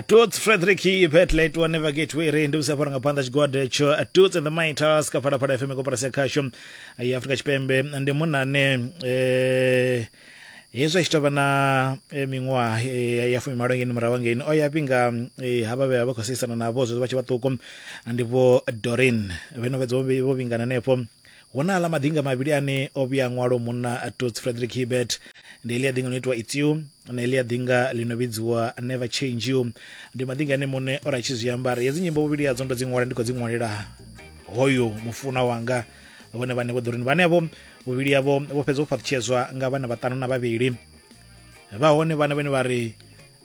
Toots Frederick Petley to never get weary ndi usafara nga panda chigwada cho Toots and the Mightas ka pada pada FM ko para sekasho ya Afrika Chipembe ndi munane eh hezwo tshi tovha na eh, miṅwaha eh, ya fumi malo ngeni murahu hangeni o ya pinga eh, havha vhe vha khou seisana navho zwezwo vha tshi vhaṱuku ndi vho dorin vheno fhedza vho vhingana henefho Hu na aḽa maḓinga mavhili ane o vhuya a ṅwalwa munna Toots Frederick Hibbert. Ndi heḽia ḓinga ḽi no itiwa It's You na heḽia ḓinga ḽi no vhidziwa Never Change You. Ndi maḓinga ane muṋe o ri a tshi zwi ambara. Hedzi nyimbo vhuvhili hadzo ndo dzi ṅwala ndi khou dzi ṅwalela hoyo mufunwa wanga vhone vhane vho ḓo ri vhanevho vhuvhili havho vho fhedza u fhaṱutshedzwa nga vhana vhaṱanu na vhavhili vha hone vhana vhane vha ri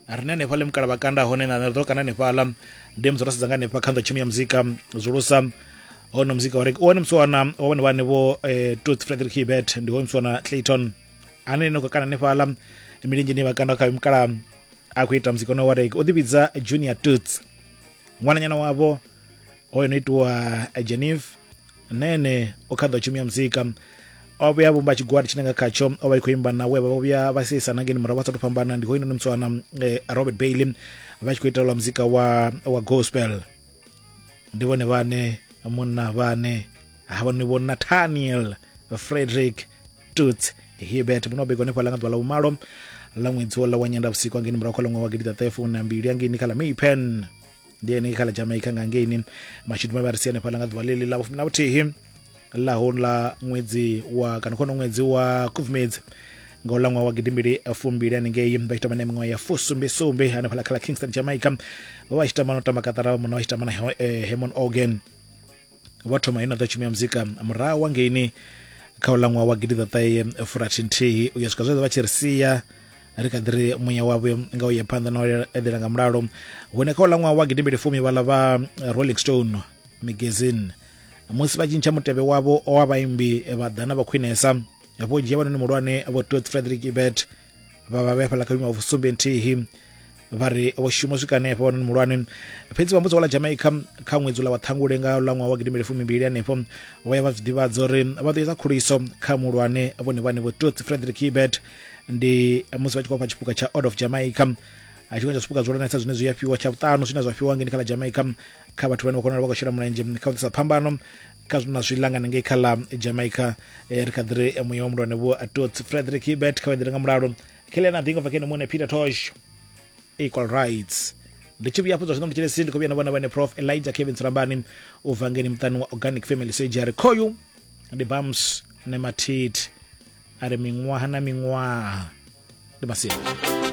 ri ne hanefha ḽe mukala vha kanda hone na ḓo kana hanefhaḽa ndi musi ro sedza nga hanefha kha nḓo tshumi ya muzika zulusa hono muzika wa reke one musiwana wa vhone vhane vho eh, tooth frederick hibert ndi hoyo musiwana clayton ane no khou kana hanefhaḽa milenzheni vha kanda kha mukala a khou ita muzika one wa reke o ḓivhidza junior toots ṅwananyana wavho hoyo no itiwa geneve na ene o kha ḓa tshumi ya muzika o vhuya vhumba tshigwada tshine nga khatsho o vha i khou imba na we vha vho vhuya vha sieisana ngeni murahu vha sa tou fhambana ndi hoyunoni mutswana eh, robert bailey vha tshi khou itelwa muzika wa, wa gospel ndi vhone vhane munna vhane havha ni vho nathaniel frederick tuts hibert muno begwa hanefha ḽa nga ḓuvha ḽa vhumalo ḽa ṅwedzi wo ḽa wa nyenda vhusiku angeni murahu kha ḽa ṅwaha wa gidiḓaṱahefu na mbili angeni kha ḽa maypen ndi henei kha ḽa jamaica nga ngeini mashudu mavhe a ri si hanefhaḽa nga ḓuvha ḽeḽi ḽa vhufumi na vhuthihi ḽa houḽa ṅwedzi wa kana khono ṅwedzi wa khubvumedzi nga uḽa ṅwaha wa gidimbili fumbili haningei vha tshi tamba na miṅwaha ya fusumbisumbe hanefhaḽa kha ḽa kingston jamaica vha vha tshi tamba no tamba katara vha muna vha tshi tamba na hemon organ vho thoma ino ḓa tshumi ya muzika murahu wa ngeini kha u ṅwaha wa gidiḓaṱahe furathi nthihi u ya swika zwezwo vha tshi ri sia ri kha ḓi ri muya wavho nga u ye phanḓa na u eḓela nga mulalo hune kha u ṅwaha wa gidimbili fumi vhala vha rolling stone magazine musi vha tshintsha mutevhe wavho wa vhaimbi vha ḓana vha khwinesa vho dzhia vhanoni muhulwane vho tot frederick ibert vha vha vhe fhala kha vhuimo ha vhusumbe nthihi vha ri vho shuma swika hanefho wanoni muhulwane fhedzi vha mudzi wa ḽa jamaica kha ṅwedzi ula wa ṱhangule nga ḽa ṅwaha wa gidimbili fumimbili hanefho vho ya vha zwi ḓivhadza uri vha ḓo eza khuliso kha muhulwane vhone vhane vho totsi frederick hibert ndi musi vha tshi khou fha tshipuka tsha order of jamaica tshiṅwe tsha zwipuka zwihulwanesa zwine zwi a fhiwa tsha vhuṱanu zwine zwa fhiwa ngeni kha ḽa jamaica kha vhathu vhane vha konala vha khou shela mulenzhe kha u ḓisa phambano kha na zwi langana ngei kha ḽa jamaica eh, ri kha ḓi ri eh, muya wa mulwane vho atots frederick ibet kha vhaendele nga mulalo khelela na ḓingo vakene muṋe peter tosh equal rights ndi tshi vhuya afho zwa zwino ndi tshelesi ndi khou vhuya na vhona vhane prof elijah kevin tsulambani u bva ngeni muṱani wa organic family surgery khoyu ndi bams ne mathithi a ri miṅwaha na miṅwaha ndi masiela